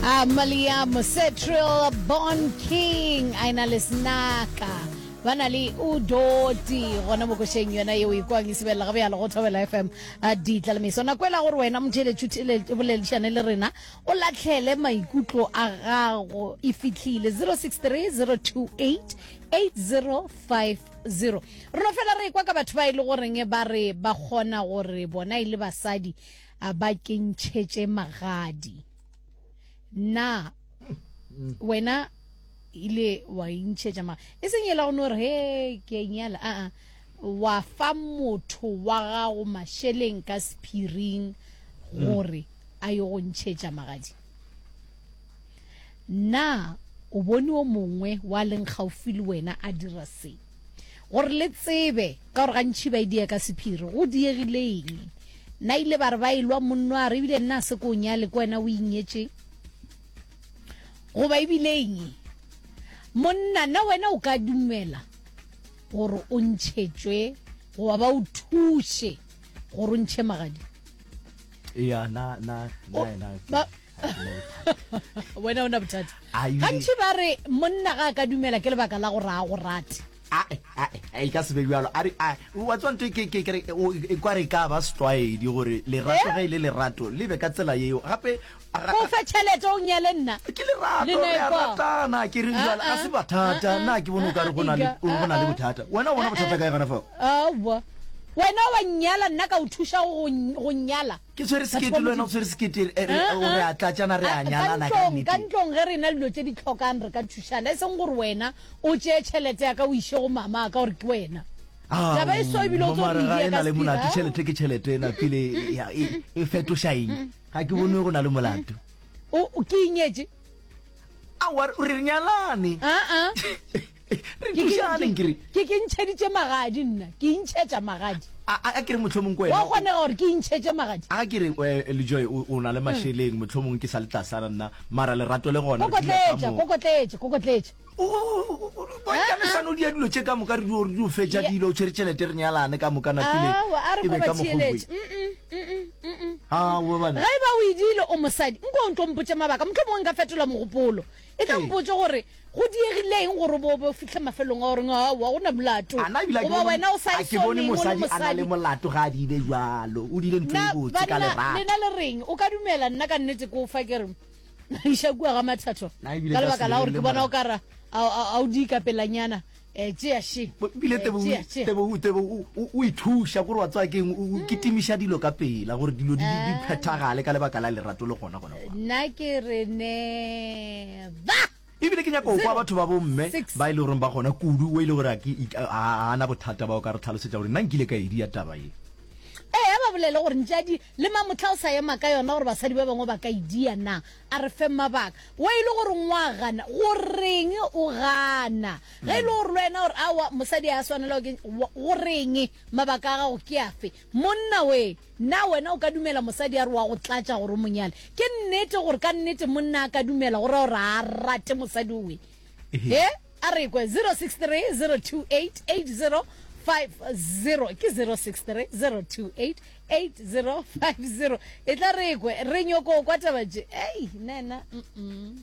Amalia Mosetril Bon King a ena le snaka ba na le udoti gona mo košeng yona yeo e kwang e sebelela ga bjalo go thobela fm a ditla le meso nako ela gore wena motheletšhuteledišane le rena o latlhele maikutlo a gago e fitlhile 063 028 8050 rona fela re kwa ka batho ba e le goreng ba re ba kgona gore bona e le basadi a ba ke ntšhetše magadi na wena ile wa intšhetša magadi e seng ela go no re he ke nyala aa wa fa motho wa gago mašeleng ka sephiring gore a yo go ntšhetša magadi na o bone o mongwe wa leng gaufi le wena a dira seng Gore le tsebe, ka gore gantši ba e dia ka sephiri. Go diegile eng? Na ile ba re ba e lwa monno a re ebile nna a se ko o nyale ke wena o inyetše? Goba ebile eng? Monna, na wena o ka dumela gore o ntšhetšwe goba ba o thuše gore o ntšhe magadi? Ea, na, na, na, na, wena o na bothata gantši ba re monna ga a ka dumela ke lebaka la gore a go rate e ka sebe bjalo a re wa tswanto e kere e kwa re ka ba setlwaedi gore lerato eh? ge e le lerato le be ka tsela yeo gape o fe tšhelete o nyale nna ke lerato ke re jala ga se bathata ah, ah, na ke bone o kare go na le ah, bothata wena o bona bothata kae gana fao wena wa nyala nna ka o thuša go nyala ke tshwere sekete le wena o tshwere sekete eh, eh, eh, re a tlatsana re a nyalana ka nnete ka ntlong ge re na dilo tse di tlhokang re ka thušana e seng gore wena o tseye tšhelete ya ka o ise go mama ka gore ke wena ah, taba e so ebile o tso re e na le molato tšhelete ke tšhelete ena pele e, e, e fetoša eng ga ke bone go na le molato o ke inyetse a wa o re nyalane aa re thušane nkere ke ke ntšheditše magadi nna ke intšhetša magadi a a- a ke re motlho mongwe wa wena kgonega gore ke intšhetše magadi a ke re eh, lejoe o o na le mašeleng motlho mongwe ke sa le tlasana nna mara lerato le gona re dula ka kokotletša mo. kokotletša kokotletša bontša mesano di ya dilo tše ka moka re dio re dio fetša dilo o tshwere tšhelete re nyalane ka moka napile awa a re e be ka kobatsieletse mokgogwe ga e ba o edile o mosadi nko o ntlo mpotse mabaka motlho mongwe nka fetola mogopolo e ka mpotse gore go diegileng gore bo bo fitlhe mafelong a goreng awa go na molato ana ebile goba wena o sa ke bone mosadi a na le molato ga a di ile jalo o dile ntlo e botse ka lerato lena le reng o ka dumela nna ka nnete ko fa ke re iša kua ga mathatho Na ebile ka ka lebaka la gore ke sirelele bona o mara. kara a o di ikapelanyana um tšea she bile Eh, Tebogo- tšea, tšea. Tebogo- Tebogo o- o- o ithuša kore wa tsoa keng o o kitimiša dilo ka pela gore dilo di- di di Ah. phethagale ka lebaka la lerato le gona gona nna ke re ne ba E bile ke nyaka go kwa batho ba bomme ba e le goreng ba gona kudu, wo e le gore a ke ik- a a na bothata ba o ka re tlhalosetša gore na nkile ka e dia taba ye. Ee, a ba bolele gore ntšadi le mamohla o sa ema ka yona gore basadi ba bangwe ba ka e dia na. A re fe mabaka. Wo e le gore ngwa gana, go reng o gana? Ge e le gore le wena o re aowa, mosadi a swanela go ke, wa, go reng? Mabaka a gago ke afe? Monna we, na wena o ka dumela mosadi a re wa go tlatša gore o mo nyale? Ke nnete gore ka nnete monna a ka dumela go ra gore ga a rate mosadi we? He, a re kwe 0630288050 ke 0630288050 e tla re kwe re nyoko kwa taba tše. Ei, nena, mm-mm.